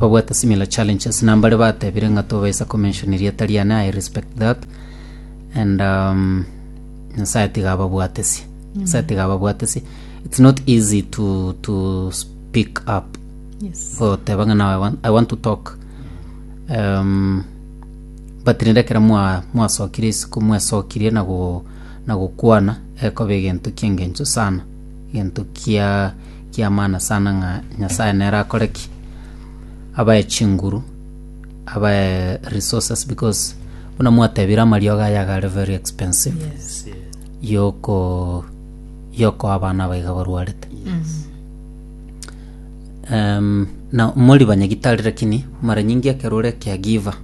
babwate similar challenges na mbare batebire ng'a tobaisa komention erieta riane i respect that and um, nyasaye tiga ababwatesie nyasaye tiga ababwatesie it's not easy to, to speak up Yes. goteba ng'a now I want, i want to talk um, but rende ekero mwa- mwasokire isiko mwesokirie na go- na gokwana ekoba egento kiengencho sana gento kia kiamana sana ng'a Nyasaye nere akore ki? Abae chinguru, abae resources because buna mwatebire amariogo aya iga are very expensive Yes. yoko yokoa abana aba iga barwarete um, na mori banyagitari lakini mara nyingi ekero ore caregiver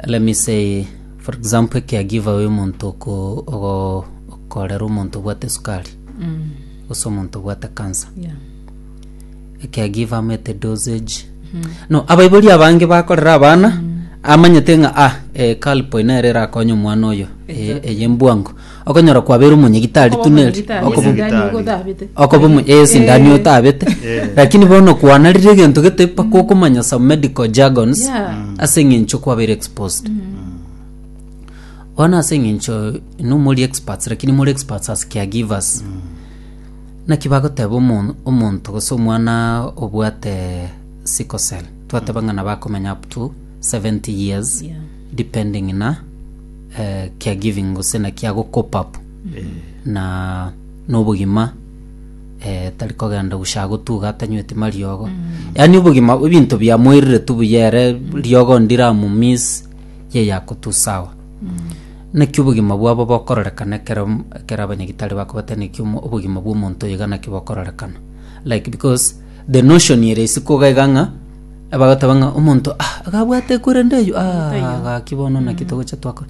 let me say for example caregiver oyo omonto oko- ogo- Korera omonto obwate esukari gose omonto obwate cancer Yeah. I can give am at a dosage no abaibori abange bakorera abana amanyete ng'a ah eh, kalpo ina ere erakonye omwana oyo eh, Exactly. eye mbwango okonyora kwabera omonyegitari Okoba tuneri omonyegitari, okoba Okoba- esindani omonyegitari. ogotabete. okoba omo- eh, esindani Eh. otabete Eh. lakini bono kwanarire egento gete mpaka okomanya some medical jargons Yeah. ase eng'encho kwabere exposed Bono ase engencho inwe mori experts lakini more experts as caregivers. Naki bagoteba omo- omonto gose omwana obwate sickle cell twateba ng'a nabo akomenya up to 70 years Yeah. depending na eh, caregiving gose naki ago cope up na nobogima eh, tari kogenda gusha gotuga atanyweti mariogo yaani obogima ebinto biamoirire tu buya ere riogo ndiramumiss ye yakotusawa naki obogima bwabo bokororekana ekero ekero abanyagitari bakobata naki omo- obogima bw'omonto oyo iga naki bokororekana like because the notion ere ase koga iga ng'a abagoteba ng'a omonto ah iga abwate ekorende eywo Omonto oyio. ah gaki bono naki togocha twakora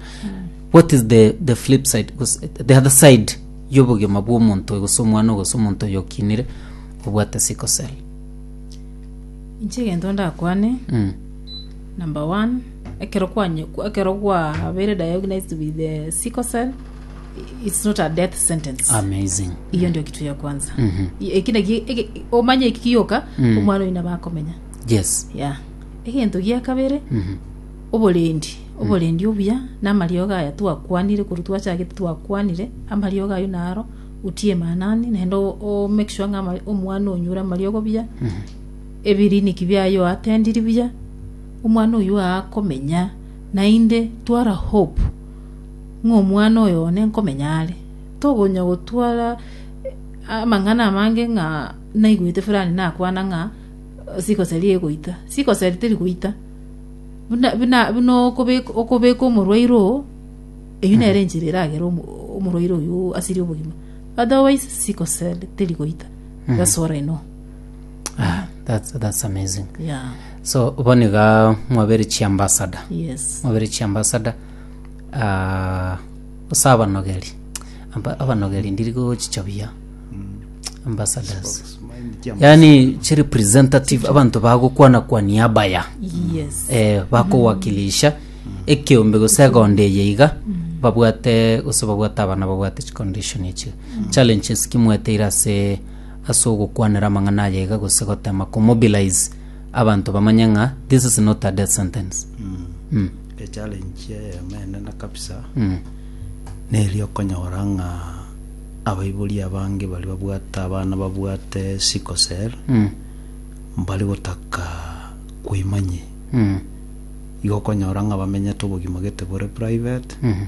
what is the the flip side gose the other side y'obogima bw'omonto oyo gose omwana oyo gose omonto oyo okinire obwate sickle cell inche egento ndakwane mm. Number one, ekero kwanye ekero gwabeire diagnosed with the sickle cell it's not a death sentence. amazing Iyo ndio kitu ya kwanza. Mhm. Eki naki eki- omanye eki kiyoka Mm. omwana oyina bakomenya. yes Yeah. Egento gia kabere Mhm. oborendi oborendi obuya namariogo aya twakwanire korwa twachagete twakwanire amariogo ayo naro utie manani naende o- o make sure ng'a ama- omwana onyure amariogo buya Ebiriniki biaye oatendiri buya, omwana oyio akomenya, naende twara hope ng'a omwana oyo one nkomenya are. Togonya gotwara amang'ana amange ng'a naigwete fulani nakwana ng'a sikoseri egoita. Sikoseri teri goita. Buna buna buna okobek okobeka omorwaire oo, eyio nere enchera eragere omo omorwaire oyio asirie obogima. Otherwise sikoseri teri goita, that's what I know. Ah, that's, that's amazing yeah so boni ga mwabere chiambasada yes mwabere chiambasada ah, ase abanogeri Amba- abanogeri ndiri gochichabia ambassadors yaani chi representative abantu bagokwana kwa niaba ya yes eh, bakowakilisha ekeombe gose egondo eye iga babwate gose babwate abana babwate chicondition echi challenges kimweteire ase ase ogokwanera amang'ana aye iga gose gotema ko mobilize abanto bamanye ng'a this is not a death sentence. Mm. Echallenge eyemo enene kabisa Mm. neri okonyora ng'a abaibori abange bari babwate abana babwate sickle cell Mm. mbari gotaka koimanyia Mm. igo okonyora ng'a bamenyete obogima gete bore private Mhm.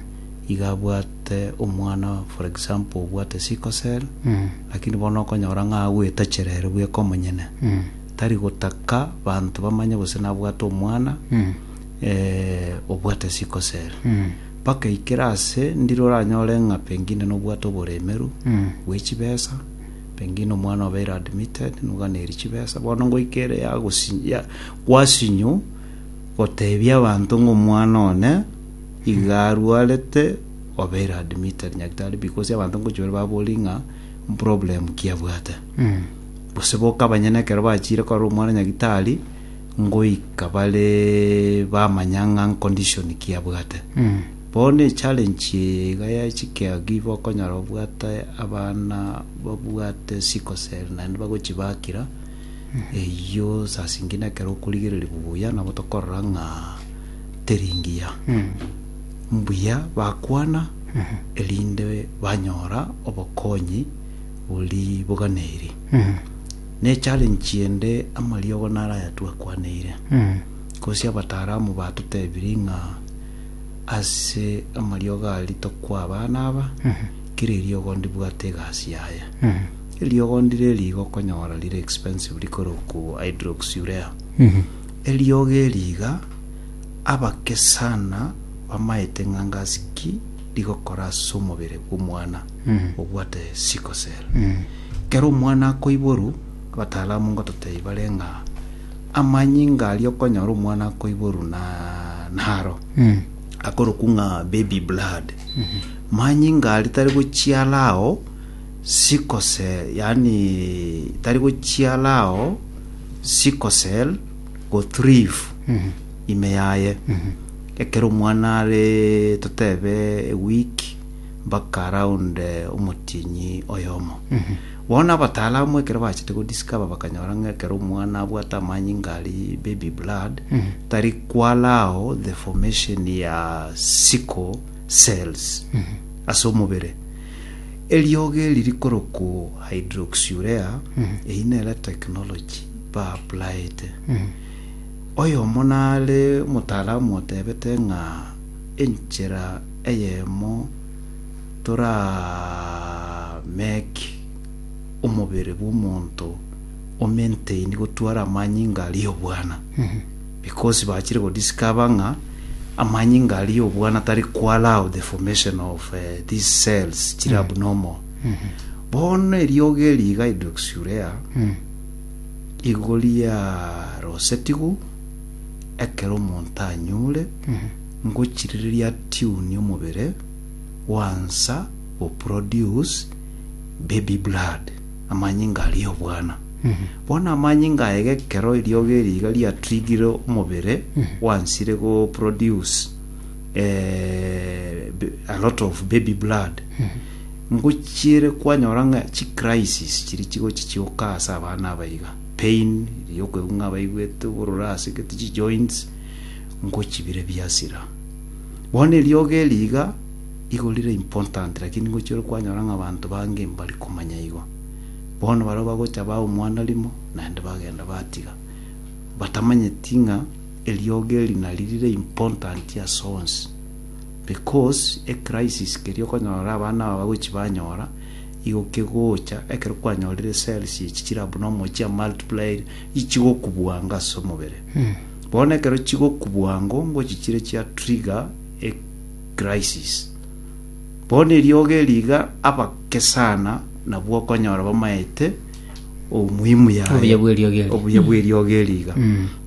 iga abwate omwana for example obwate sickle cell Mm. Lakini bono okonyora ng'a agwetachera ere bweka omonyene, tari gotaka banto bamanye gose nabwate omwana obwate sikose ere. Mpaka aikere ase ndire oranyore ng'a pengine nobwate oboremeru bwe chibesa, pengine omwana obeire admitted noganeiri chibesa. Bono ngoika ere yagosinyi ya gwasinyu gotebia abanto ng'a omwana one iga arwarete obere admitted nyagetari because abanto ngochia bare baborie ng'a problem ki abwate gose boka abanyene ekero bachiire korora omwana nyagetari ngoika bare bamanya ng'a condition ki abwate bono echallenge iga ya chikea give okonyora obwate abana babwate sickle cell naende bagochibakera eyio saa zingine ekero okorigereria buya nabo tokorora ng'a teri ngiya. mbuya bakwana, erinde banyora obokonyi bori boganeiri. Ne challenge ende amariogo naro aya twakwaneire, gose abataramu batotebiri ng'a ase amariogo a ritoku abana aba, kera eriogo ndibwate egasi yaye. Eriogo ndire eri iga okonyora rire expensive rikorokwa hydroxyurea. Eriogo eri iga. Abakesana bamaete ng'a ngasi ki rigokora ase omobere bw'omwana obwate sickle cell. Ekero omwana akoiborwa, abatalamu ngototebia bare ng'a amanyinga aria okonyora omwana akoiborwa na naro akorokwa ng'a baby blood. Manyinga aria tari gochiara ao sickle cell yaani tari gochiara ao sickle cell gothrive ime yaye ekero omwana are totebe a week mpaka around eh, omotienyi oyomo bono abatalamu ekero bachete godiscover bakanyora ng'a ekero omwana abwate amanyinga ari baby blood tari kwalao the formation ya sickle cells ase omobere eriogo eri rikoroku hydroxurea eyi nere technology baburaete. Oyomo nare omotaramu otebete ng'a enchera eyemo toramake omobere bw'omonto o maintain gotwara amanyinga aria obwana because bachire go discover ng'a amanyinga aria obwana tari ko allow the formation of eh, these cells chire abnormal bono eriogo eri iga hydroxurea Igori yarosetigwe ekero omonto anyure ngochirireria atune omobere gwansa go produce baby blood, amanyinga aria obwana. Bono amanyinga aye gekero eriogo eri iga riatigire omobere gwansire go produce eh, a lot of baby blood, Ngochiire kwanyora ng'a chi crisis chiri chigochi chioka ase abana aba iga, pain ri okoigwa ng'a abaigwete obororo ase gete chi joints, ngochibire biasira. Bono eriogo eri iga, igo rire important lakini ngochia ore kwanyora ng'a abanto bange mbari komanya igo. Bono baria bagocha baa omwana rimo, naende bagenda batiga, batamanyeti ng'a eriogo eri nari rire important ase onsi. Because e crisis keria okonyora abana aba bagochi banyora, igo kegocha ekero kwanyorire cells echi chire abnormal chia multiplied ichigokubwanga ase omobere. Bono ekero chigokubwango ngochi chire chia trigger e crisis. Bono eriogo eri iga abake sana nabwo okonyora bamaete omuhimu yaye Obuya bw'eriogi eri. obuya bw'eriogi eriga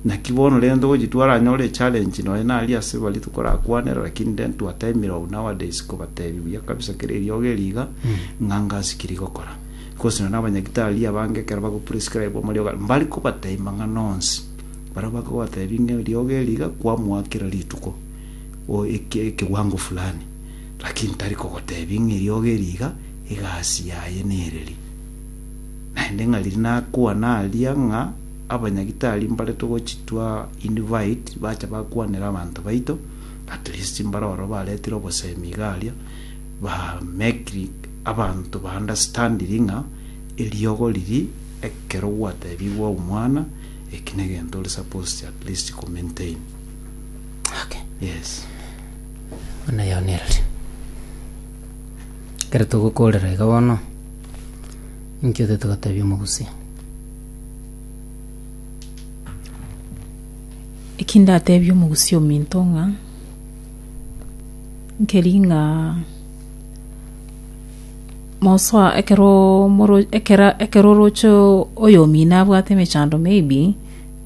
naki bono rero togochi twaranyore echallenge nonye nari ase baria tokorakwanera lakini then twataimire oo nowadays kobatebi buya kabisa kera eriogi eriga ng'a ngasikiri gokora gose nonye na abanyagitari abange ekero bagoprescribe amariogi aria mbari kobateima ng'a nonsi baria bakobatebi ng'a eriogi eriga kwamoa kera rituko o- eke- ekewango fulani lakini tari kogotebi ng'a eriogi eriga egasi yaye nere ri. Naende ng'a riria nakwana aria ng'a abanyagitari mbaretwe gochitwa invite bacha bakwanera abanto baito at least mbare oro baretire obosemi iga aria ba make abanto ba understand ng'a eriogo riria ekero gwatebigwe omwana eki negento ore supposed at least ko maintain. Okay. Yes. Buna yaonereri. Ekero togokorera iga bono. Inki otete goteebia omogusia? Eki ndateebie omogusia ominto ng'a nkeri ng'a mosoa ekero moro ekera ekero oroche oyo omino abwate emechando maybe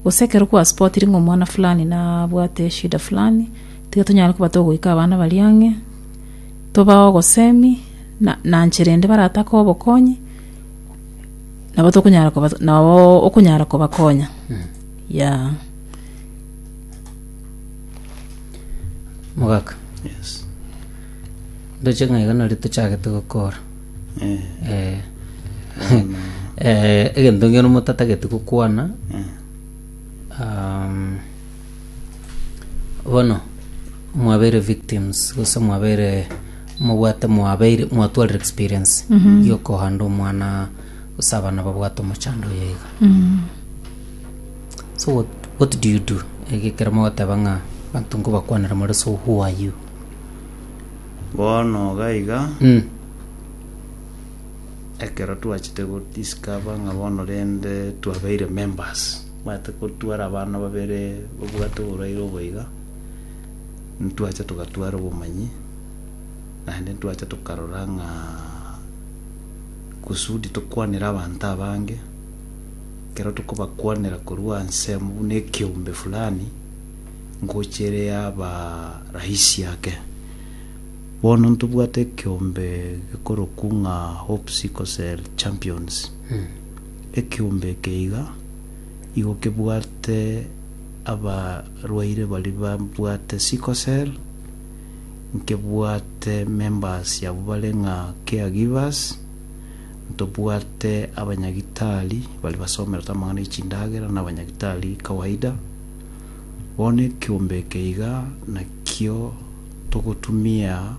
gose ekero kwaspotire ng'a omwana fulani nabwate eshida fulani tiga tonyare koba togoika abana baria ang'e Tobao ogosemi na nanche rende baratake obokonyi, nabo tokonyara koba nabo okonyara kobakonya. Yeah. Mogaka. Yes. Ndoche ng'a iga nari tochagete gokora. Eh, Eh. Eh, egento ngero motatagete gokwana. eh. Um, Bono mwabere victims gose mwabere mobwate mwabeire mwatwarire experience yokohanda omwana gose abana babwate omochando oyo iga so what, what do you do egekero mogoteba ng'a banto nkobakwanera more so who are you bono gaiga mm. ekero twachete go discover ng'a bono rende twabeire members, omanyete ko tware abana babere babwate oboraire obo iga, ntwacha togatwara obomanyi, naende ntwacha tokarora ng'a kusudi tokwanere abanto abange, ekero tokobakwanera korwa anse amu buna ekeombe fulani, ngocha ere yaba rahisi ake. Bono ntobwate ekeombe gekorokwu ng'a Hope Sickle Cell Champions. Ekeombe eke iga igo kebwate abarwaire baria babwate sickle cell, nkebwate members abwo bare ng'a caregivers, ntobwate abanyagitari baria basomerete amang'ana e chindagera na abanyagitari kawaida. Bono ekeombe eke iga nakio. togotumia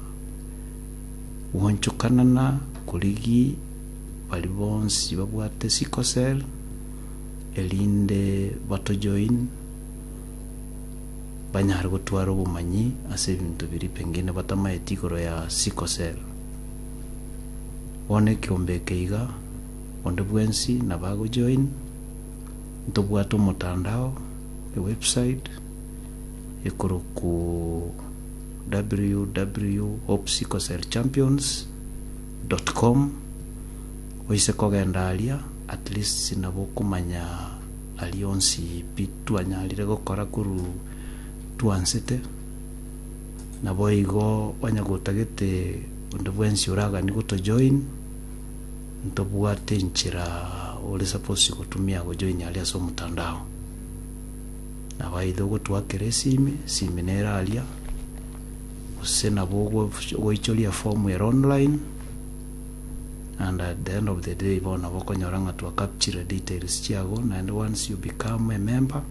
gwanchokanana korigi bari bonsi babwate sickle cell erinde batojoin banyare gotwara obomanyi ase ebinto biria pengine batamaeti igoro ya sickle cell. Bono ekiombe eke iga onde bwensi nabo agojoin ntobwate omotandao ewebsite. ekorokwu www.hopesicklecellchampions.com oise kogenda aria at least nabo okomanya aria onsi pi twanyarire gokora korwa twansete naboigo onye gotagete onde bwensi oragani goto join ntobwate enchera ore suppose gotumia go join aria ase omotandao. nabaeire ogotoakera esimi, esimi nere aria, gose nabo ogof- ogoichoria efomu ere online, and at the end of the day bono nabo okonyora ng'a twa capture details chiago, naende once you become a member,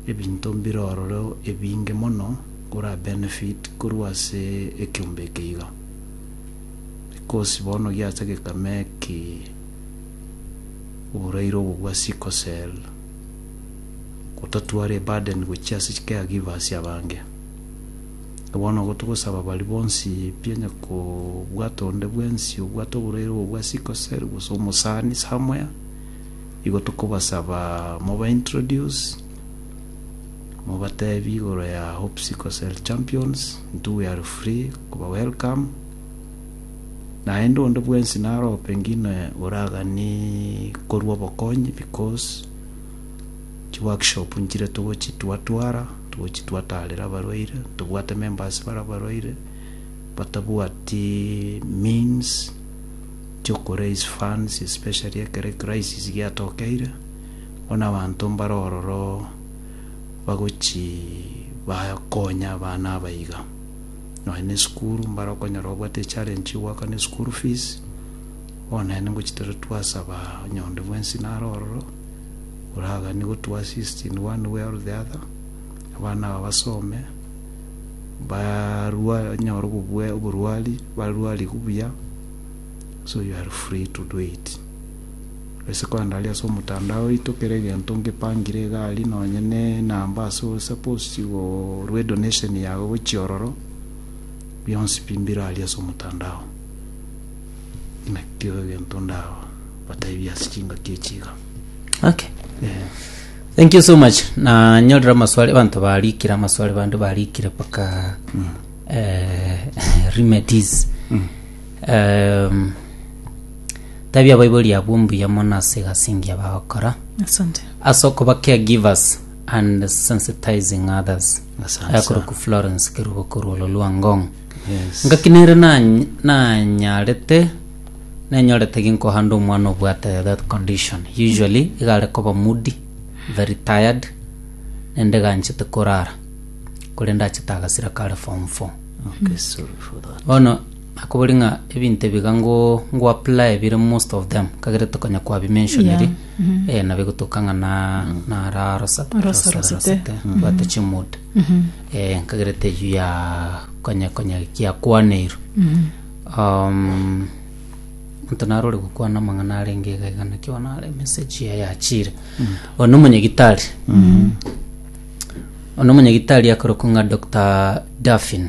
ebinto mbire ororo ebinge mono ora benefit korwa ase ekeombe eke iga. Because bono giacha gekame eki, oboraire obo bwa sickle cell. gotatware eburden gochia ase chicare givers abange. Na bono igo togosaba baria bonsi pi onye kobwate onde bwensi obwate oborwaire obo bwa sickle cell gose omosani somewhere, igo tokobasaba moba introduce, mobatebi igoro ya Hope Sickle Cell Champions, intwe we are free koba welcome. naende onde bwensi narope ng'ina oragani korwa obokonyi because chiworkshop nchire togochitwatwara togochitwatarera abarwaire tobwate members bare abarwaire batabwati means choko raise funds especially ekere crisis giatokeire bono abanto mbare ororo bagochi bakonya abana aba iga. Nonya nesukuru mbare okonyora obwate echallenge chigoaka ne school fees bono naende ngochi tore twasaba nyonde bwensi naro ororo oragani gotu assist in one way or the other abana aba basome barwa nyore oborwari barwarigu buya so you are free to do it. Resiko ande aria ase omotandao oito kera egento ngepangire egari nonye ne enamba ase o suppose chigorwa edonation yago gochia ororo bionsi pi mbire aria ase omotandao nakio egento ndaba bataebia ase chingaki echi iga okay eh. thank you so much nanyorire amaswali abanto barikire amaswali bande barikire mpaka eh, remedies Em, Tabia abaibori abwo mbuya mono ase egasi engiya bagokora Asante. ase okoba caregivers and sensitizing others Asante sana. ayakorokwa florence kerubo korwa ololua ngong Yes. ngaki nere nany- nanyarete nenyorete ginkohanda omwana obwate that condition usually igare koba moody very tired nende ganchete korara korende achete agasira kare form four Okay, sorry for that. bono Akobori ng'a ebinto ebiga ngo ngoapply bire most of them kagerete konya kwabimentioniri Yeah. eh, nabo egotoka ng'a na nara rosa Rosa- rosete. bwate chimood eh, nkagerete eyio ya konya konya giakwaneirwe um, onto narore gokwana amang'ana arenge iga iga naki bono are message ya yachire one omonyagitari one omonyagitari akorokwa ng'a dr daffin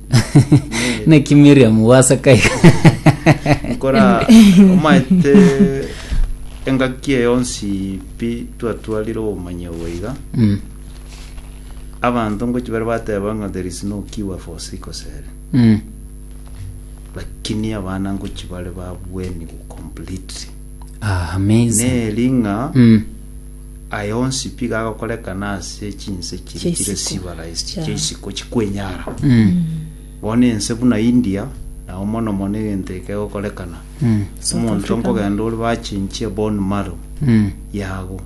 naki miriam gwaseka iga nkora omaete engaki eye yonsi pi twatwarire obomanyi obwo iga Mm, abanto ngochi bare bateba ng'a there is no cure for sickle cell mm, lakini abana ngochi bare babwenigwa completely ah, amazing neri ng'a Mm, Aya onsi pigo agokorekana ase chinse chire chire Chiisiko. civilized Yeah. chiisiko chikwenyara bono ense buna india nao mono mono egento eke egokorekana omonto nkogenda ore bachinchie bone marrow yago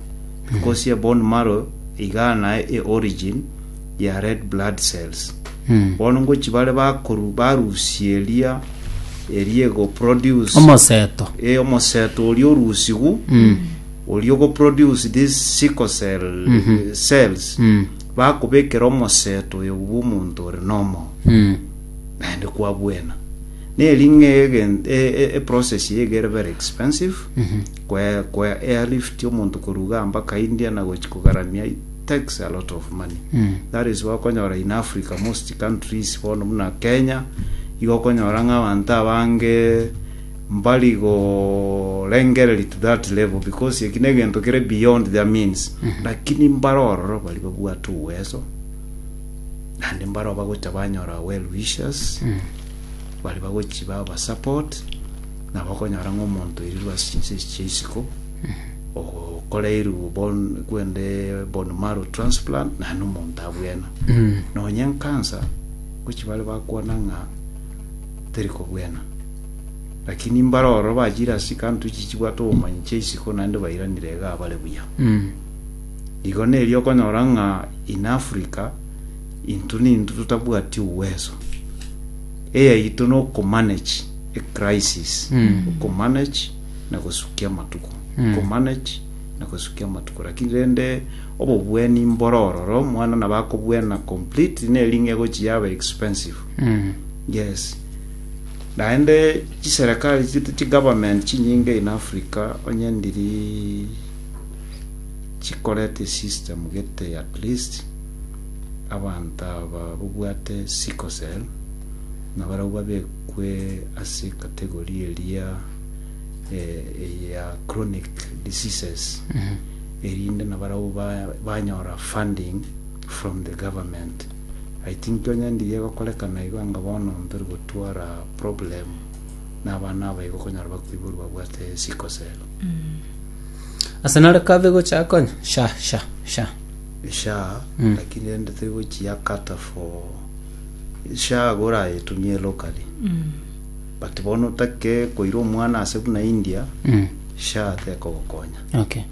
because ye bone marrow iga naye e origin ya red blood cells bono ngochi bare bakoru barusia eria eria ego produce omoseto e omoseto oria orusigu oria ogoproduce this sickle cell cells Mm. bakobekera omoseto oyo bw'omonto ore nomo Mm. naende kwabwena neri ng'e egen- e- e- eprocess eye egere very expensive kwe kwe airlift omonto koruga mpaka india na gochi kogaramia it takes a lot of money Mm. that is why okonyora in africa most countries bono buna kenya igo okonyora ng'a abanto abange Mbari gorengereria to that level because eki negento kere beyond their means lakini mbare ororo bari babwate uwezo naende mbare bagocha banyora well wishers bari bagochi baba support na bakonyora ng'a omonto oirerwe ase chinse echi chia isiko okoreirwe bone kwende bone marrow transplant naende omonto abwene nonye nkansa gochi bare bakwana ng'a teri kobwena. Lakini mbare ororo bachire ase chikantu echi chibwate obomanyi chia isiko naende bairanire iga bare buya. Igo nerio okonyora ng'a in Africa intwe nintwe totabwati uwezo eyaito na okomanage ecrisis, okomanage na gosukia amatuko, okomanage na gosukia amatuko. Lakini rende obobwenia mbore ororo mwana nabo akobwena completely neri ng'a egochia yaba expensive. Yes. Naende chiserekari chi- chigovernment chinyinge in Africa onye ndiri chikorete system gete at least abanto aba babwate sickle cell na barabwo babekwe ase category eria eh, eya chronic diseases erinde na barabwo ba- banyora funding from the government I think onye ndiye egokorekana igo anga bono ntori gotwara problem na abana aba igo okonyora bakoiborwa babwate sickle cell. Ase nare kabe gocha konya sha sha sha. sha Mm. lakini rende tiri gochiakata for sha igo orayetumie locally but bono otake koira omwana ase buna india Mm. sha tekogokonya Okay.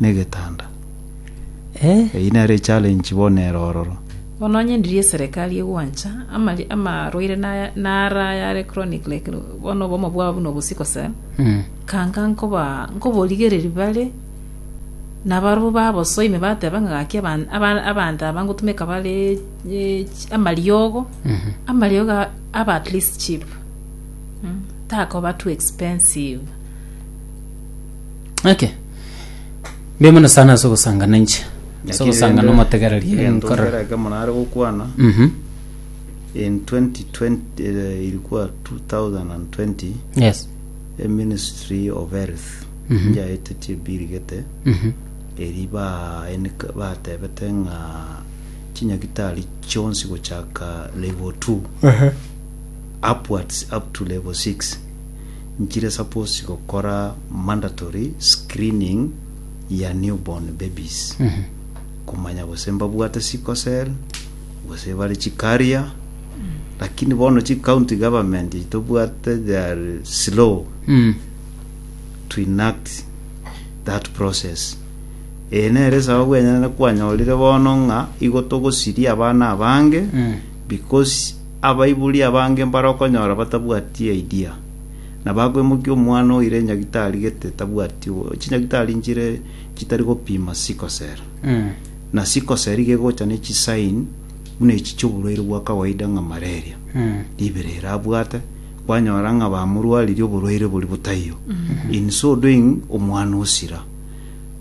negetanda. Eh. Eyio nere echallenge bono ere ororo. Bono onye ndiri eserekari egwancha amari amarwaire naya nara ayare chronic like bono obomo bwabo buna obo sickle cell Mm. kanga nkoba nkoborigereri bare nabarobwo babosoa ime bateba ng'a gaki aban- aba- abanto aba ngotumeka bare eh, chi- amariogo Mhm. amariogo a- aba at least cheap Mm, takoba too expensive Okay. Mbe mono sana ase ogosangana inche. Ase Lakini ogosangana rende, omotegereria egento nkora. nkera ekemo nare gokwana Mhm. in 2020 eh, ilikuwa 2020 Yes. a ministry of health Mhm. njaetetie birigete Mhm. eri ba- enika- batebete ng'a chinyagitari chionsi gochaka level 2 upwards up to level 6 nchire suppose gokora mandatory screening ya new born babies komanya gose mbabwate sickle cell gose bare chi carrier lakini bono chi county government echi tobwate they are slow Mm. to enact that process eye nere esababu enyene kwanyorire bono ng'a igo togosiria abana abange Mm. because Abaibori abange mbarokonyora batabwati idea, na bakwemokia omwana oire nyagitari gete tabwati chinyagitari nchire chitari gopima sickle cell. Na sickle cell iga egocha ne chisign buna echi chioborwaire bwa kawaida ng'a malaria. Ribere ere abwate kwanyora ng'a bamorwaririe oborwaire bori botaiyo. In so doing omwana osira.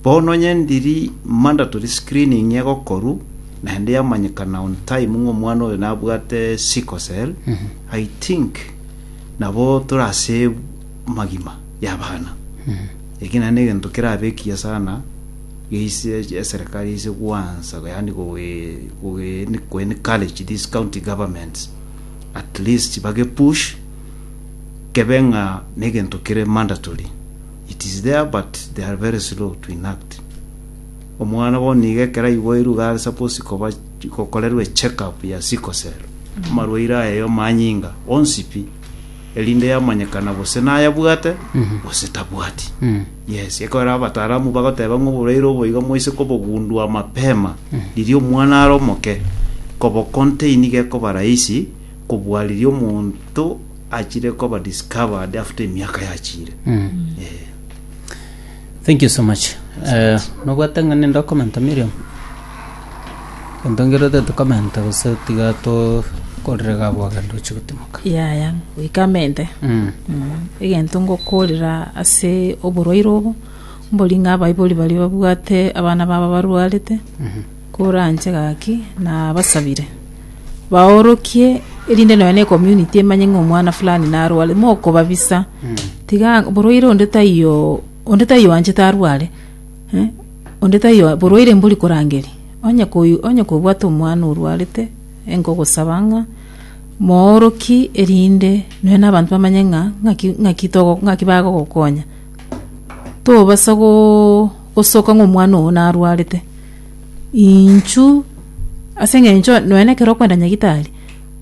Bono onye ndiri mandatory screening egokorwa, naende yamanyekana on time ng'a omwana oyo nabwate sickle cell, I think nabo tore ase amagima y'abana. Eki naende negento kerabe ekiya sana geise eserekari yaise gwansa yaani koe- koe- koe- encourage these county governments at least bage push kebe ng'a negento kere mandatory. It is there but they are very slow to enact. Omwana bono nigo ekero aiboirwe iga are suppose koba gokorerwa echeck up ya sickle cell. Amarwaire aye omanyinga onsi pi erinde yamanyekana gose nayabwate gose tabwati. Yes, ekero abataramu bagoteba ng'a oborwaire obo iga moise kobogundua mapema riria omwana are omoke kobo contain iga ekoba rahisi kobua riria omonto achire koba discovered after emiaka yachire Eh, Thank you so much. Eh, nobwate ng'a ninde okomenta Miriam? Gento ngerete tokomenta gose tiga tokorire gabo agende oche gotimoka. yaya goikamente Mm. egento ngokorera ase oborwaire obo mbori ng'a abaibori baria babwate abana babo barwarete Koranche gaki nabasabire baorokie erinde nonya ne community emanye ng'a omwana fulani narware mokobabisa tiga borwaire onde taiyo onde taiyo anchete arware eh, onde taiyo borwaire mbori korangeria onye koyu onye kobwate omwana orwarete enkogosaba ng'a mooroki erinde nonya na abanto bamanye ng'a ng'aki ng'aki togo ng'aki bagogokonya tobasa go. Gosoka ng'a omwana oo narwarete, inchu ase eng'encho nonya na ekero okoenda nyagitari,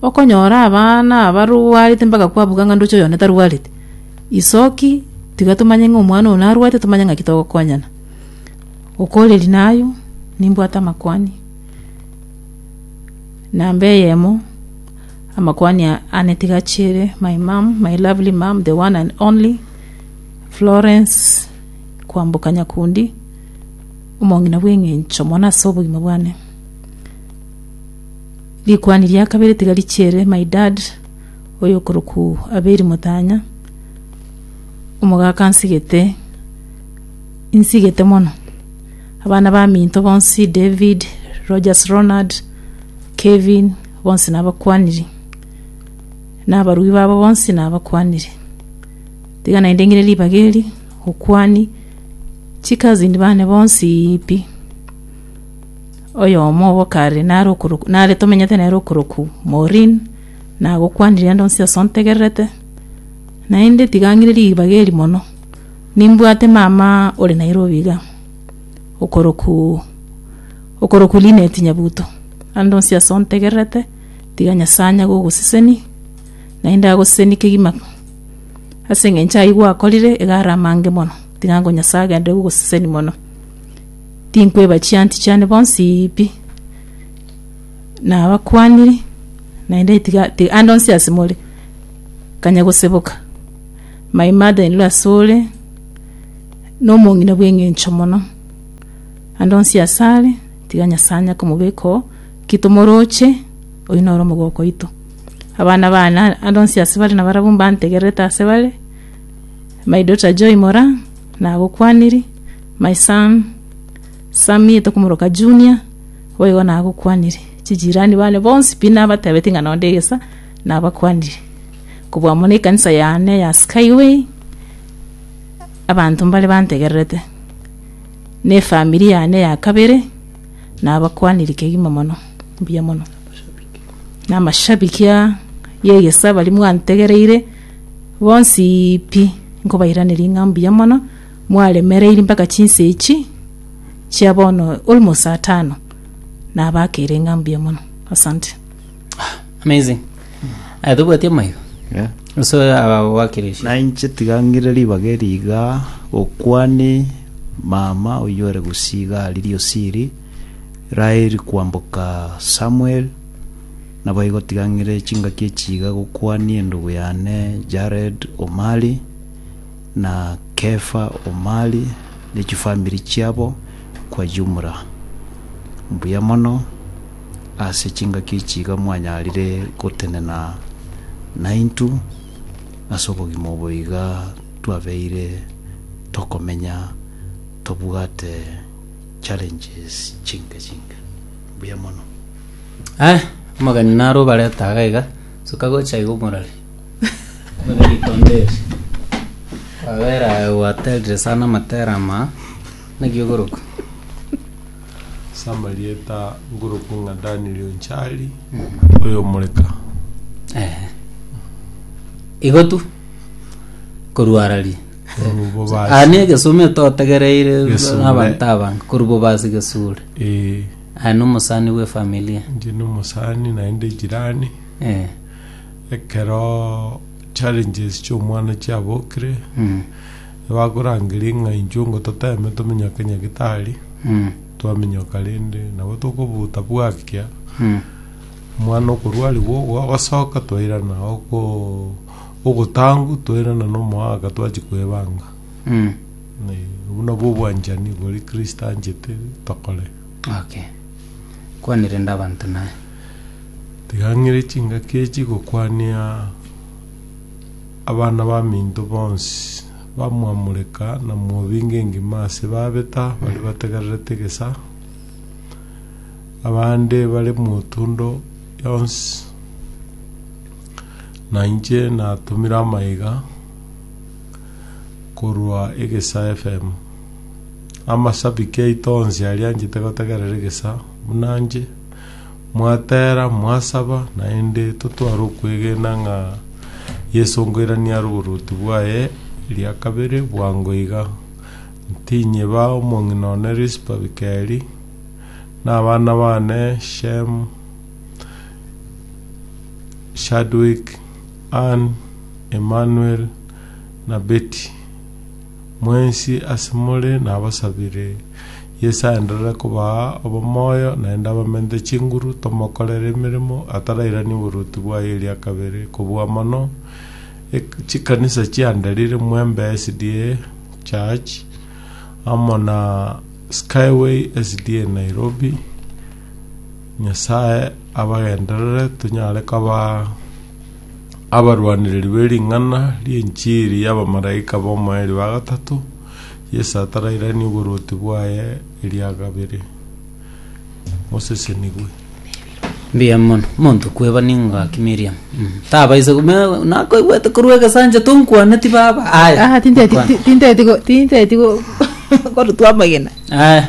okonyora abana abarwarete mpaka kwabuga ng'a ndoche oyone tarwarete. Isoki tiga tomanye ng'a omwana oo narwarete tomanye ng'aki togokonyana. Okoreria naye nimbwate amakwani, namba eyemo, amakwani aa ane tiga achiere, my mum, my lovely mum, the one and only Florence. kwamboka nyakundi omong'ina bw'engencho mono ase obogima bwane. Rikuani ria kabere tiga richiere my dad oyokorokwu Abeli Mutanya, omogaka nsigete, nsigete mono. Abana baminto bonsi David, Rogers Ronald, Kevin bonsi nabakwaniri, nabarui babo bonsi nabakwaniri. Tiga naende ngire ribaga eri, okwani chicousin bane bonsi pi. Oyomo obo kare nare okorok- nare tomenyete nere okorokwa Maureen, nagokwanire ande onsi ase ontegererete, naende tiga ngire ribaga eri mono, nimbwate mama ore Nairobi iga, okorokwa okorokwa Linet Nyabuto, ande onsi ase ontegererete, tiga Nyasae anye gogoseseni. naende agosesenie kegima ase engencho ayio gwakorire, iga are amange mono, ting'ango Nyasae agenderere gogoseseni mono. Tinkweba chianti chiane bonsi pi, nabakwaniri, naende tiga tiga ande onsi ase more, kanya goseboka. My mother in law ase ore, na omong'ina bw'eng'encho mono, ande onsi ase are, tiga Nyasae anya komobeka oo, ki tomoroche, oyio noro omogoko oito. Abana bane ande onsi ase bare nabarabwo mbantegererete ase bare, my daughter Joy Moraa nagokwaniri, my son Sammie tokomoroka Junior boigo nagokwaniri, chijirani bane bonsi pi nabatebetie ng'a nonde egesa nabakwaniri. Kobua amo na ekanisa yane ya Skyway, abanto mbare bantegererete, na efamiri yane ya kabere nabakwaniri kegima mono, mbuya mono. Namashabiki aa y'egesaa baria mwantegereire, bonsi pi, nkobairaneria ng'a mbuya mono, mwaremereiri mpaka chinsa echi chia bono almost saa tano, nabakeire ng'a mbuya mono. Asante. Amazing. Aya tobwati amaiga. Yeah. Uso aba wakirisha. na inche tiga ngire ribaga eri iga gokwani mama oyio ore gusii iga riria osiri Raheli kwamboka Samueli, naboigo tigang'ire chingaki echi iga gokwania endugu yane Jared Omali, na Kefa Omali, ne chifamiri chiabo kwa jumla. Mbuya mono, ase chingaki echi iga mwanyarire gotenena naintw ase obogima obo iga twabeire tokomenya tobwate challenges chinke chinke. Mbuya mono. Eh, omogeni naro obareta iga iga soka gocha iga omorore Omorore rikonde eri. kwabera aye gwaterire sana amatera ama naki ogoroka Ase amarieta ngoroku ng'a Daniel Onchari oyomoreka. Eh. igo tu korwarari Koruboba ase- aya negesumi totegereire Gesure. abanto abange koruboba ase gesure Eh, aya nomosani bwefamilia inche nomosani naende jirani Eh, ekero challenges chiomwana chiabokire mm, bakorangeria ng'a inchuo ngo toteme tomenya ka nyagitari mm, twamenyoka rende nabo tokobuta bwakia mm, omwana okorwarigwa ogo agosoka twairana oko Ogotangu toirana nomoaka twachia kwebanga. Obwo nabwo obwanchani bori Kristo anchete tokore. Okay. Kwanire inde abanto naye. Tiga ng'ire chingaki echi gokwania abana baminto bonsi bamwamoreka na mwobinga engima ase babeta baria bategererete egesaa, abande bare motundo yonsi. Na inche natumire amaiga korwa egesaa FM. Amashabiki aito onsi aria anchete gotegerera egesaa buna nche, mwatera, mwasaba, naende totware okwegena ng'a Yeso nkoirania are oboruoti bwaye eria kabere bwango iga. Ntinyebaa omong'ina one Rispa Bikeri, na abana bane Shem, Chadwick, Ann, Emmanuel, na Betty, mwensi asemore nabasabire Yeso aenderere kobaa obomoyo naende abamenyete chinguru tomokorere emeremo atarairania oboruoti bwaye eria kabere kobua mono chikanisa chianderire Mwembe SDA Church amo na Skyway SDA Nairobi, Nyasae abagenderere tonyare koba abarwanereri be ring'ana ri'enchiri y'abamalaika b'omoerio ba gatato, Yeso atarairanie oborwoti bwaye eria kabere. Mosesenigwe. Mbuya mono monto kweba ningaki Miriam Mm. tabaise ku- me- nakoigwete korwa egesancha tonkwaneti baba aya Ah, tinteti- Nkwana. ti- tinteti go- tinteti go- korutwa amagena aya